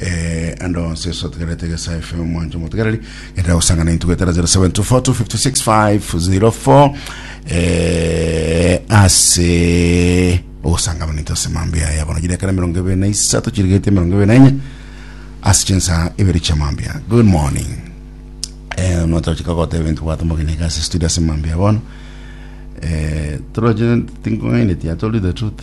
Eh, ande onse yesu otegerete gesa efe omwancho motegereri gendera gosangana intu gwetera 0724256504 eh, ase ogosanga abaninto ase mambi aya bono chiri ekero emerongo ebere na isato chirigete emerongo ebere na enye ase chinsa ibere chia mambi aya good morning eh, notochika goteba ebintu gwatomogeneka ase studio ase mambi aya bono eh, toroche tingong'aineti atori the truth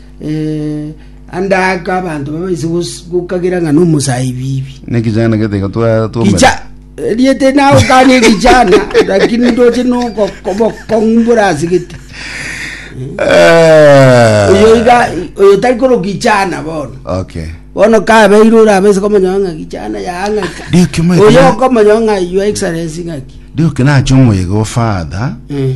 Eh, ande aka abanto babaise gos- gokagera ng'a nomosabibi nekijana getiga twatwomera kicha riete nawe kani kijana lakini ndoche nokokong'umbura asigete oyo iga oyo tari koro kijana bono okay bono kabeire orabaise komanya ng'a kijana yaang'aka Ndio kimo oyo ekana- okomanya ng'a your excellence ng'aki ndio kinache omoyega ofather Mm.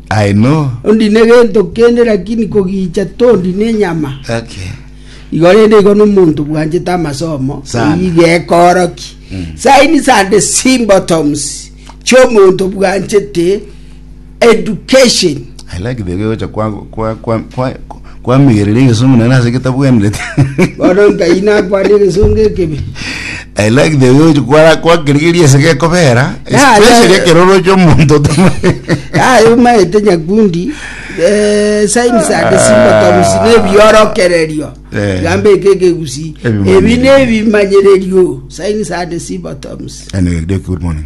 Aye no. Tondi negento kende lakini kogicha tondi nenyama. Okay. Igo rende igo nomonto bwanchete amasomo Sana. oyio gekooroki signs and symptoms chiomonto bwanchete education I like the way ocha kwa, kwa, kwa, kwa, Kwamigereri egesongo naende ase getabwenereti. Bono nkai nakwane egesongo ekebe. I like the way ochi kwara kwakirigeria ase gekobera, Yeah, especially yeah. ekero oroche omonto otama. yaye omaete nyakundi eh, signs and symptoms Ah. nebiorokererio Eh. gambe eke ekegusi Ebimanyererio. ebi nebimanyererio signs and symptoms Anyway, good morning.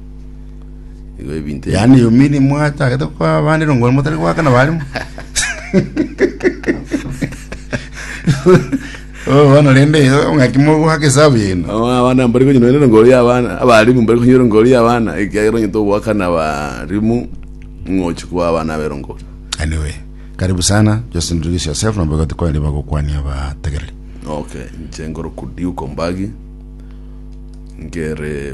Igo ebinto ebi- yaani yomini mwachagete kwa abande rongoro motari gwakana barimo Oh, bono rende ng'aki mogwaka esabu yeno Aba- abana mbari konywa nende ngori y'abana abarimu mbari konywa ngori y'abana ekiagera onyete ogwakana abarimu ng'ochi kwa abana bero ngori anyway karibu sana just introduce yourself na mbagati kwa riba gokwania abategereri okay nche ngoro kudiuko mbagi nkere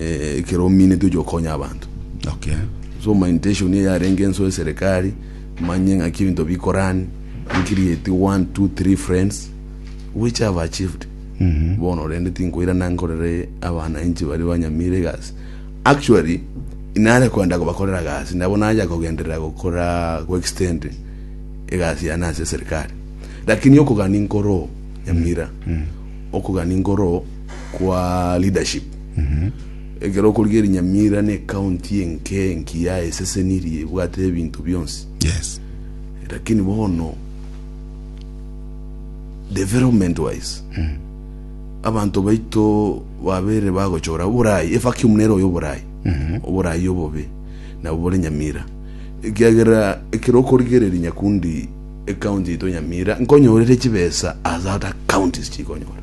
eh, ekero ominete oche okonya abanto Okay. so my intention eye yarenge enso eserikali manye ng'aki ebinto bikorani nkirieti one two three friends which have achieved bono rende tinkoirana nkorere abananchi bari banyamire egasi actually nare kwenda kobakorera gasi nabo naja kogenderera gokora goextend egasi yane ase eserikali lakini okogani nkoroo nyamira okogani nkoroo kwa leadership ekero okorigia eri Nyamira ne county enke enkiya esesenirie ebwate ebinto bionsi Yes. lakini bono development wise abanto baito babere bagochora oborai evacuum nero oyo oborai oborai obobe nabo bore nyamira ekiagera ekero okorigereria nyakundi ecounty yaito nyamira nkonyorere chibesa as other counties chikonyora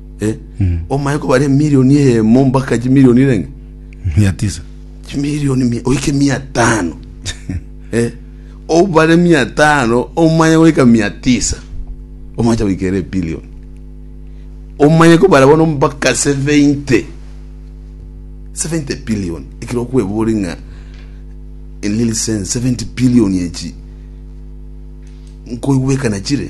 Eh, omaye kobare emilioni eyemo mpaka chimilioni renge mia tisa chimilioni mia- oike mia tano Eh, obare mia tano omanye goika mia tisa omacha goikera ebilioni omanye kobara bono mpaka 70 70 billion ekero okwebori ng'a in little sense 70 billion echi nkoigwekana chire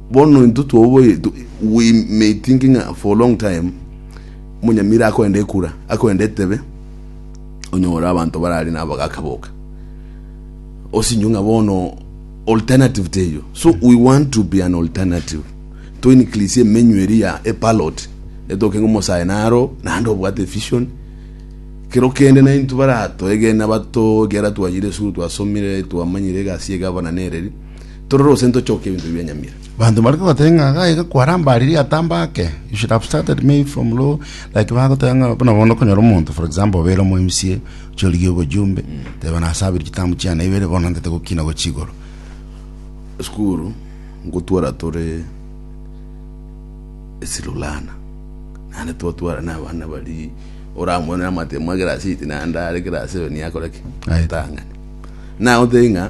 Bono intwe twaoboyete, we may thinking for a long time, omonyamira akoenda ekura, akoenda etebe, onyore abanto barare nabo bagaka boka, osinyo ng'a bono alternative teiyo. So we want to be an alternative, to increase emenyu eri ya a parrot, etoke ng'a omosae naro, naende obwate vision, kero kende naintwe baratoegene abato, ekiagera twachire esukuru twasomire, twamanyire egasi ya egavana nereri. Torore gose ntochoke ebinto bibia nyamira. Banto bare kogoteba ng'a gaiga kwarambarire atamba ake, you should have started maybe from low, like bagoteba ng'a buna bono okonyora omonto for example obeire omo MCA, chorigia obojumbe, teba nasabire chitamu chiane ibere bono nantete gokina gochia igoro. Esukuru ngotwara tore esirulana, naende twatwara na abana bari oramwene amate mwa egerasi ite naende are egerasi ero niakore ki? Aetang'ani. Nagoteba ng'a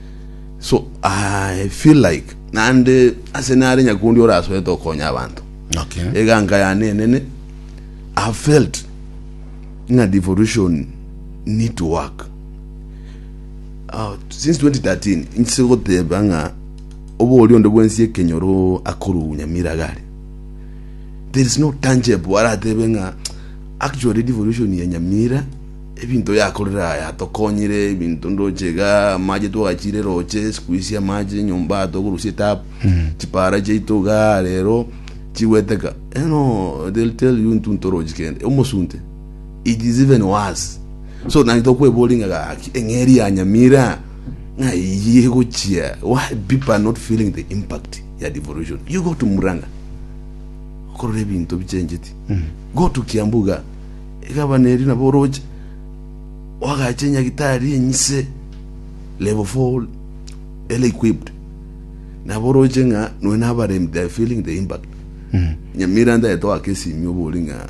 so i feel like nande ase nare nyakundi orasoete okonya abanto Okay. eganga yane enene i felt ng'a devolution need to work uh, since 2013 nchise goteba ng'a obo ori onde bwensi ekenyoro akoru nyamira gare there is no tangible aratebe ng'a actually devolution ya nyamira Ebinto yakorire aya yatokonyire, ebinto ndoche iga, amache twagachire roche, sikuisi amache nyomba aya togorusia etap, chipara chiaito iga rero chigweteka. You know, they'll tell you intwe ntorochi kende, omosunte, it is even worse. So naki tokweboria ng'a gaki eng'eri ya Nyamira ng'a eyio egochia, why people are not feeling the impact ya devolution. You go to Murang'a, okorora ebinto bichenjeti, go to Kiambu iga, Gavanaeri nabo oroche, oagache nyagitari enyise level full well equipped, nabo oroche ng'a noe na abaremi they are feeling the impact. Nyamira ntagete oake esimi obori ng'a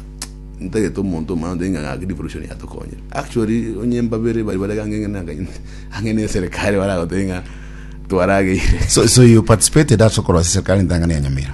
ntagete omonto omanye otebi ng'a gaki devolution yatokonyire. Actually onye mbabere bari bare ganga eng'ene na eng'ene ang'e na eserekari baragotebi ng'a twarageire. So, so you participated ase okorwa ase serikali entang'ani ya Nyamira?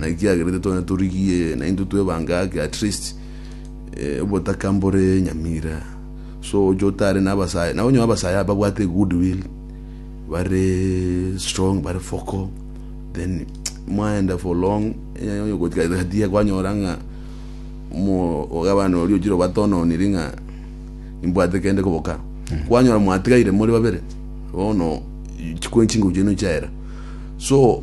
Naki kiagerete twene torigie naintwe twebange ake at least eh, obotaka mbore nyamira so oche otare nabasae na onyo abasae aba bwate good will bare strong bare foko then mwaenda for long eh, onyo gotigatia kwanyora ng'a mo ogabana ori ochiro batononiri ng'a imbwate kende koboka kwanyora mwatigaire muri babere bono chikwenchi ngo chenu chaera so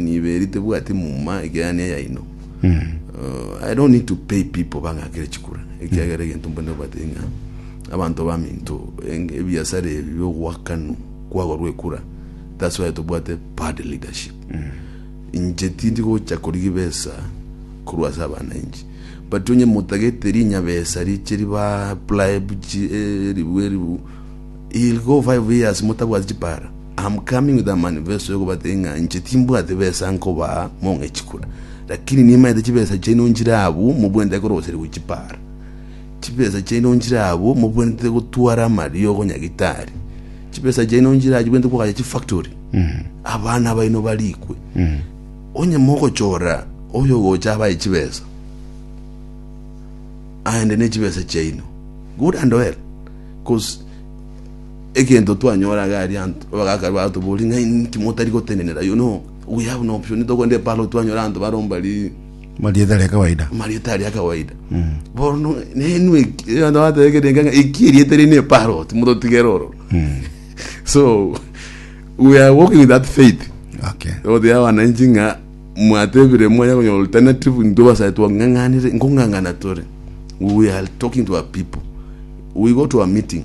Niberi tebwati muma ekeanio yaino. Uh, I don't need to pay people bang'akere chikura ekiagera egento mbone obate ng'a abanto baminto eng- ebiasara ebi biogoakanu kwagorwa ekura that's why tobwate bad leadership inche tindi gocha korigia ebesa korwa ase abananchi but onye motagete rinyabesa riche riba apply buchi eh, ribu eribu Ill go five years motabwati chipara, am coming with a manifesto yokobatebi ng'a inche timbwati besa nkobaa mong'e chikura, lakini nimaete chibesa chiaino nchire abwo mobwenerete koroserigwa chipara. Chibesa chiaino nchire abwo mobwenerete gotwara amariogo nyagitari. Chibesa chiaino nchire abwo chibwenerete koagacha chifactory, abana baino barikwe. Onye mogochora oyo ogocha abae chibesa, aende nechibesa chiaino good and well. Cos egento twanyora iga aria anto abagaka batobori ng'a inki motari gotenenera you know we have no option togende eparo twanyora anto baromba ri marieta aria kawaida marieta aria kawaida bono nenu ategerenga ng'a eki erieta eri ne parrot mototigere oro so we are walking with that faith okay ogotegia wananchi ng'a mwatebire mwanya konyora alternative intwe basae twang'ang'anire nkong'ang'ana tore we are talking to our people we go to a meeting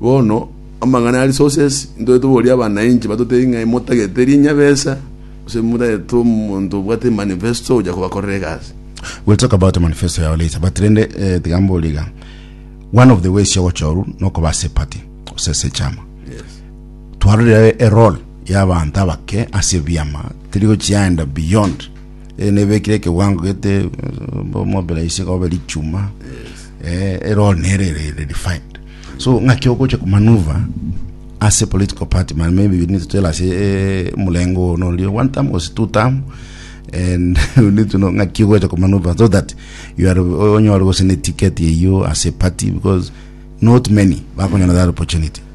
bono amang'ana ya resources intwe toboria abanainchi batotebie ng'a motagete rinyabesa gose motagete omonto obwate manifesto oja kobakorera egasi We'll talk about the manifesto yao later but rende eh, tiga mbore iga one of the ways yogochorwa nokoba ase party gose ase chama yes Twarorire eroll y'abanto abake ase ebiama teri gochiaenda beyond eh, nebekire ekewango gete mobera ise kobe richuma eh, eroll nere re- re- refined so ng'aki ogocha kumanuva ase political party man maybe we need to tell us eh, mulengo ono orio one time was two time and we need to know ng'aki ogocha kumanuva so that you are onyore gose ne ticket eyio ase party because not many bakonyora that opportunity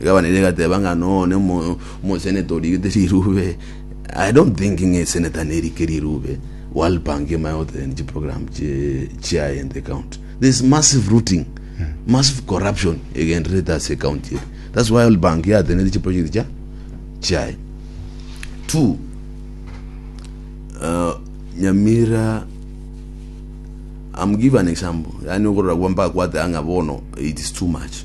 Egabana eria egateba ng'a no ne mo moseneta origete rirube. I don't think ng'a eseneta nerike rirube walpanga emaye gotegerera chi program chi chiaye in the county. There is massive rooting, massive corruption egendererete ase county eye. That's why walpanga yatenenete chi project chia chiaye. Two, uh, Nyamira I'm give an example, yaani okorora kwa mpaka kwateba ng'a bono it is too much.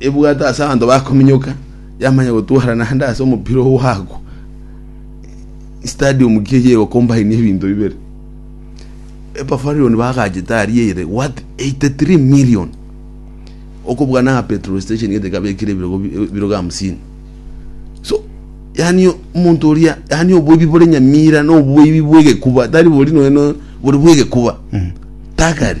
ebwato ase abanto bakominyoka, yamanya gotwara naende ase omopira ogwagwa. Stadium ki eye egocombine ebinto bibere? Epafarion bagachete aria ere worth 83 million. Okobua na petrol station gete kabekire ebirogo bi- ebirogo hamsini. So, yani omonto oria, yani oboibi bore Nyamira na oboibi bw'egekuba, tari bori nonya no, bori bw'egekuba. Tagari.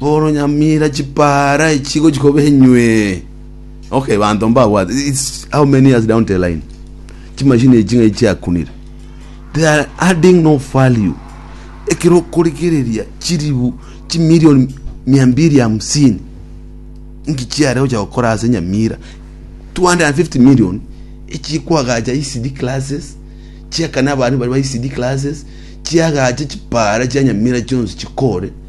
Bono nyamira chipara echi gochia koba enywee. Okay, banto mbabwate. It's how many years down the line? Chimachine echi ng'ai chiakunire? They are adding no value. Ekero okorigereria chiribu chimilion mia mbili hamsini inki chiare gocha gokora ase nyamira 250 million echi kwagacha ECD classes chiakana abana baria ba ECD classes chiagache chipara chia nyamira chionsi chikore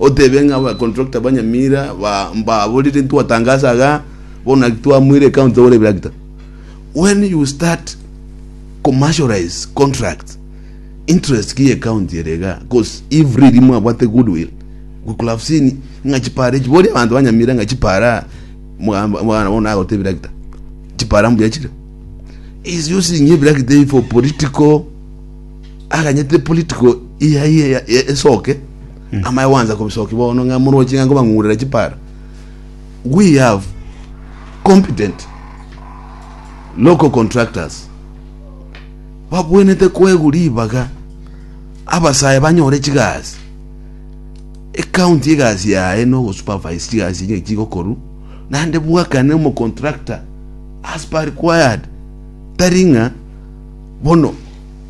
Otebe ng'a aba contractor ba Nyamira ba mbaborire ntwatangaasa iga bono naki twamoire ecounty togore ebirakita. When you start commercialize contract interest ki ye county ere iga cause if really mwabwate goodwill we could have seen ng'a chipara echi boria abanto ba Nyamira ng'a chipara mwa- mwana bono nagotee ebirakita chipara mbuya chire. He is using ebirakita ebi for political aganyete political eyaye esoke. Amaye gwansa kobisokia bono ng'a moroche ng'a nkobang'urera chipara. We have competent local contractors babwenete koegwa ribaga abasae banyore chigasi ecounty egasi yaye na ogosupervise chigasi echi chigokorwa naende bwakane omocontractor as per required tari ng'a bono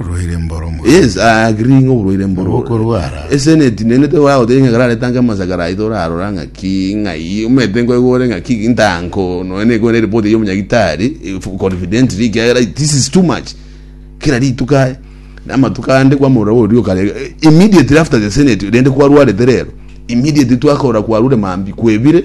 Oborwaire mboro mono. Yes, I agree ng'a oborwaire mboro. Obokorwara. Eseneti nene te wao te ng'akara reta nka masakara aito rarora ng'a ki ng'a i omete nko igore ng'a ki ntanko no ne igore report yo munyagitari confidently ki era this is too much kera rituka na matuka ande kwa mura orio kare immediately after the senate rende kwa rware terero immediately twakora kwa rure mambi kwebire